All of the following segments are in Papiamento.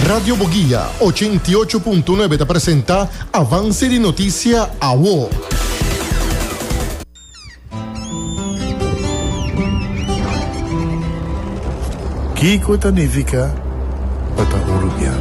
Radio Boguia ochenta i ocho punto nuebe ta presenta Avance di notisia awo. Kiko ta nifica pa ta un rubian?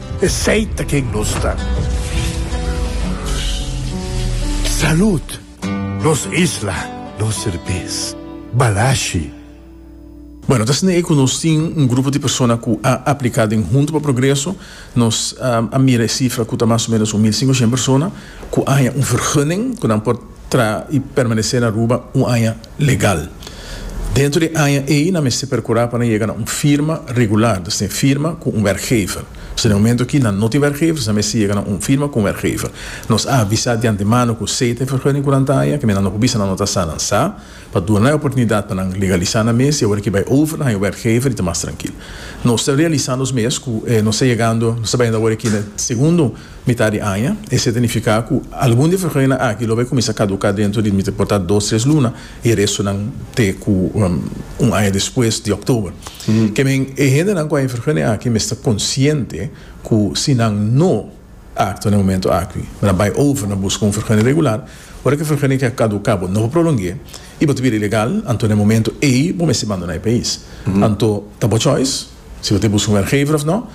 Esey ta ken nos ta. Salud! Nos isla, nos serbes. Balashi. Bueno, ta asina ei ku nos tin un grupo di persona ku a apliká den Hunto pa Progreso. Nos a mira e sifra ku ta mas o ménos un mil sinku hèn persona ku a haña un vergunning ku nan por traha i permanesé na Aruba un aña legal. Dentro di e aña ei nan mester percura pa nan yega na un firma regular, dus tin firma cu un werkgever. Pasobra den e momento aki nan no tin werkgevers, nan mester yega na un firma cu un werkgever. Nos a avisa di antemano cu sea ta e vergunning cu nan ta haña, kimen nan no por bisa nan no ta sa, nan sa, pa duna nan e oportunidad pa nan legalisa nan mes y awor aki bay over, nan haña werkgever y ta mas trankil. Nos ta realisa nos mes cu nos ta yegando, nos ta bayendo awor aki na e segundo. Mitá di aña, esei ta nifiká ku algun di e frecuentenan aki lo bai kuminsá kaduká dentro di mester por ta dos tres luna i e restonan te ku un aña despues di oktober. Ke men e hendenan ku a e frecuentenan aki mester konsiente ku si nan no aktua na e momento aki, nan bai over na buska un frecuente regular, ora ku e frecuente ke a kaduká bo no por prolong'é i bo ta bira ilegal, anto na e momento ei bo mester bandoná e pais. Anto ta bo choice. Si bo ta buska un werkgever of no,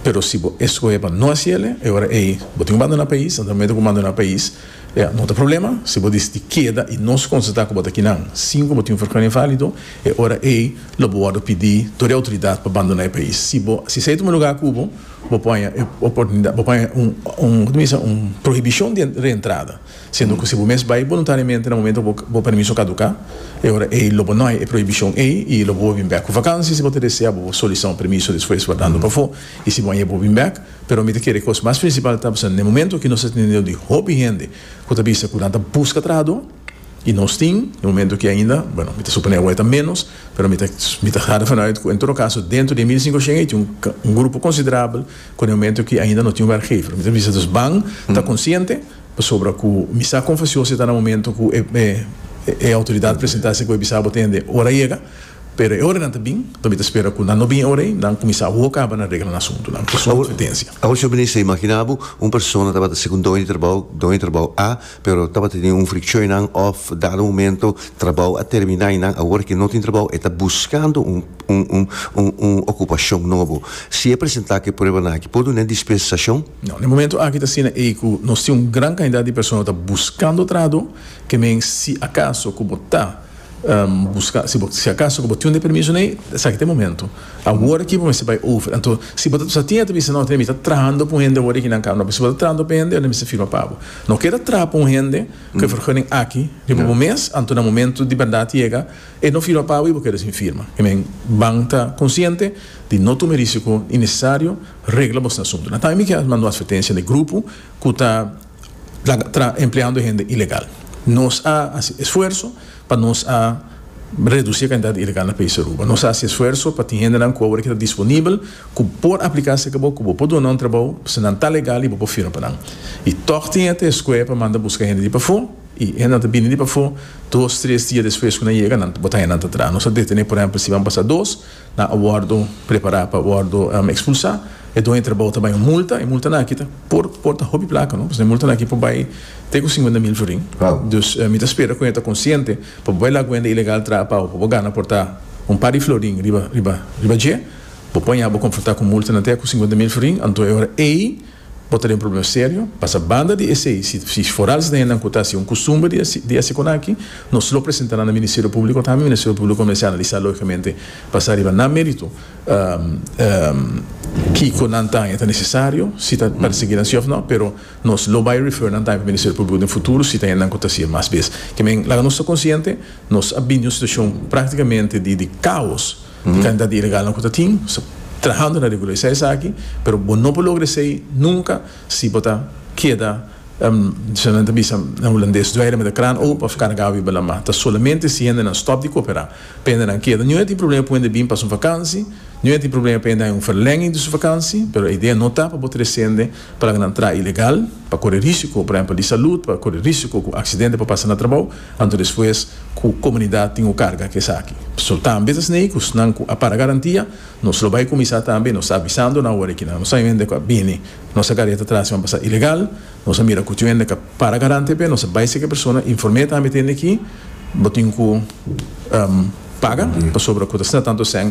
pero si bo eskohe pa no hasi ele, e ora ei bo tin ku bandona pais, na momento ku bandona pais ya no ta problema, si bo disidi keda i nos konstatá ku bo ta kinan sin ku bo tin un vergunning válido, e ora ei lo bo wòrdu pidi dor e outoridat pa bandona e pais. Si bo si esei ta un lugá kubo, bo paña e oportunida bo paña un un koto mi bisa un prohibishon di reentrada. Siendo cu si bo mes bay boluntariamente na momento cu bo permiso caduca, e ora ey lo bo no hay e prohibicion ey y lo bo bin bek cu vakantie. Si bo ta desea bo bo solicita un permiso despues wardando pafo y si bo a yebo bin bek. Pero mi ta kere cos mas principal ta pasando n'e momento aki nos ta tene deo di hopi hende cu ta bisa cu nan ta busca trahador y nos tin n'e momento aki ainda, bueno mi ta supone awe ta menos, pero mi ta mi ta harda vanu uit cu en todo caso dentro di e mil cincoshien ey tin un grupo considerable cu n'e momento aki ainda no tin werkgever. Mi ta bisa dus ban ta consciente. Pasobra ku mi sa kon fasi osi ta na momento ku e outoridat presentá si ku e bisa bo tende ora a yega, pero e ora nan ta bin, pa mi ta spera ku nan no bin e ora ei, nan kuminsá awor kaba nan regla nan asuntunan ku su kompetensia. Awor señor Minister, imaginá bo un persona tabata segun doño di trabou, doño di trabou A, pero tabata tene un frikshon einan òf dado momento trabou a terminá i nan awor ke no tin trabou e ta buskando un un un okupashon nobo. Si e presentá ku e pruebanan aki por dun'é dispensashon? No, na e momento aki ta asina ei ku nos tin un gran kantidat di persona ku ta buskando trado, ke men si akaso ku bo ta buska, si bo si akaso ku bo tin un deprimiso nei, esaki ta e momento. Awor aki bo mester bai over. Anto si bo ta sa tin e ta bisa, no, mi ta trahando pa un hende awor aki nan kaba, no, pero si bo ta trahando pa e hende, mi mester firma pa bo. No ke ta traha pa un hende ku e vergunning aki riba bo mes, anto na momento di bèrdat yega e no firma pa bo i bo keda sin firma. Ke men ban ta konsiente di no tuma e risiko innesesario. Regla bos na asuntu. Nathan i Miquel a manda un atvertensia na e grupo cu ta laga tra empleando e hende ilegal. Nos a haci esfuerso pa nos a reduci e cantidad di ilegal na país Aruba. Nos a haci esfuerso pa tin hendenan cu awor e ta disponibel cu por aplica cerca bo, cu bo por duna un trabao pasobra nan ta legal i bo por firma pa nan. I tog tin e ta escue pa manda busca hende di pafo i e hendenan ta bini di pafo dos, tres dia despues cu nan yega nan bo ta haña nan ta traha. Nos a detene, por ehempel, si ban pasa dos. nan a wòrdu prepará pa wòrdu ekspulsá, e doño trabou ta bai un multa, e multanan aki ta por por ta hopi plaka, no, pasobra e multanan aki por bai te ku sinkuenta mil florin, dus mi ta spera ku e ta konsiente pa bo bai la kuenta ilegal traha pau pa bo gana por ta un par di florin riba riba riba dje, bo por haña bo konfrontá ku multanan te ku sinkuenta mil florin, anto e ora ei Bo ta den problem serio, pasa banda di esei, si forados na hendan cu ta haci un custumber di haci conaki, nos lo presenta nan na Ministerio Publico, tambe Ministerio Publico mester analiza logicamente basa riba nan merito kico nan ta haña ta necesario, si ta persegui nan si of no, pero nos lo bay refer nan tambe pa Ministerio Publico den futuro si ta hendan cu ta haci e mas bes. Kimen, laga nos ta consciente, nos a bini un situacion practicamente di caos. Di kantidad di ilegalnan ku ta tin, bo sta trahando na regularisá esaki, pero bo no por logra esei nunka si bo ta keda, kiko nan ta bisa na hulandes, duerme met de kraan open of karga wi bo lama. Ta solamente si hendenan stòp di koperá pa hendenan keda. Nihun a tin problema pa hende bin pasa un vakansi, nihun a tin problema pa hende haña un verlènging di su vakansi, pero e idea no ta pa bo trese hende. Plan nan traha ilegal, pa kore risiko, por ehempel di salud, pa kore risiko ku aksidente por pasa na trabou, anto despues ku komunidat tin ku karga ku esaki. So tambe ta snei ku snan ku a para garantia, nos lo bai kuminsá tambe, nos ta avisando nan awor aki nan, nos sabe hende ku a bini nos a gareta tras i a pasa ilegal, nos a mira ku tiu hende ku a para garante p'e, nos a bai seki persona inform'é tambe tende ki bo tin ku paga pasobra ku ta sna tantu esèn.